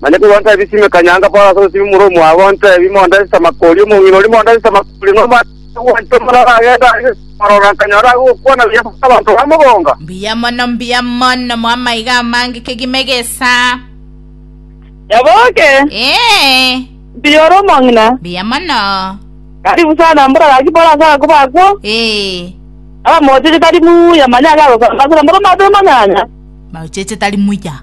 Manya korwa nta ebi simeka nyanga Paulo ase obosio bw'omorua omwabo ontebi Monda ase Samakori omong'ina oria Monda ase Samakori nomanyete ogwancha omore aragende agise komorora nkanyora age gokwana buya ase abanto bamogonga. Mbuya mono, mbuya mono, moamaiga amange kegima egesa. Nyaboke, Ee, mbuya ore omong'ina. mbuya mono. Karibu sana mbura gaki Paulo ase agakuba akwo. Ee, Abamocheche tari muya manya agagosamba ase nomoro matoe manyanya. maocheche tari muya.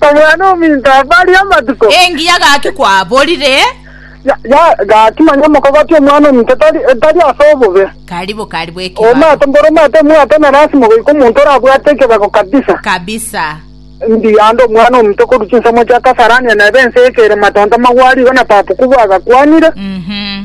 Omwana-o-minto abarie amatuko. Engiya gaki kwaborire. Ya, ya, gaki manya omokogoti omwana-o-minto tari, tari ase obobe. Karibu, karibu ekebaro. Omate, mboro omate omwate na lasima goika omonto orabwate ekebako kabisa. Kabisa. Ndi ande omwana-o-minto korwa chinsemo chia Kasarania nebe ense y'ekerema tontama gwarigo na papu kubwa agakwanire. Mhm.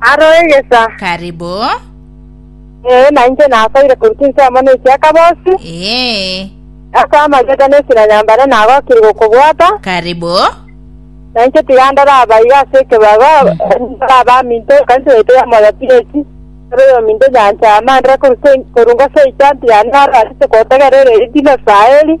Aro egesa. Karibu. Ee, na inche nasoire korwa chinsemo na echiakabosi. Ee. Ase amageta na esira ya mbare nagokire gokobwata. Karibu. Na inche tiga ndore abaiga ase ekebago, ndore abaminto ekanisa yaito ya Moyo Pieti, ndore oyominto nyanchama, ndore korwa se- korwa ngose echanti yane aro arete kotegerera erinde Israeli.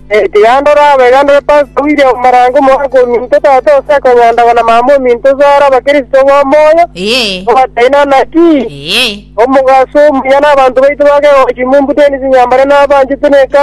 Tiga ndore aba iga ndore Pastor William Marange omoanko ominto tata ase ekonyandagwa na mama ominto ase are abakristo b'omoyo, Ee. obataineaneti, Ee. omogaso omuya nabanto baito ba kegochi, Mumbu Dennis Nyambare nabanchete na ekanisa.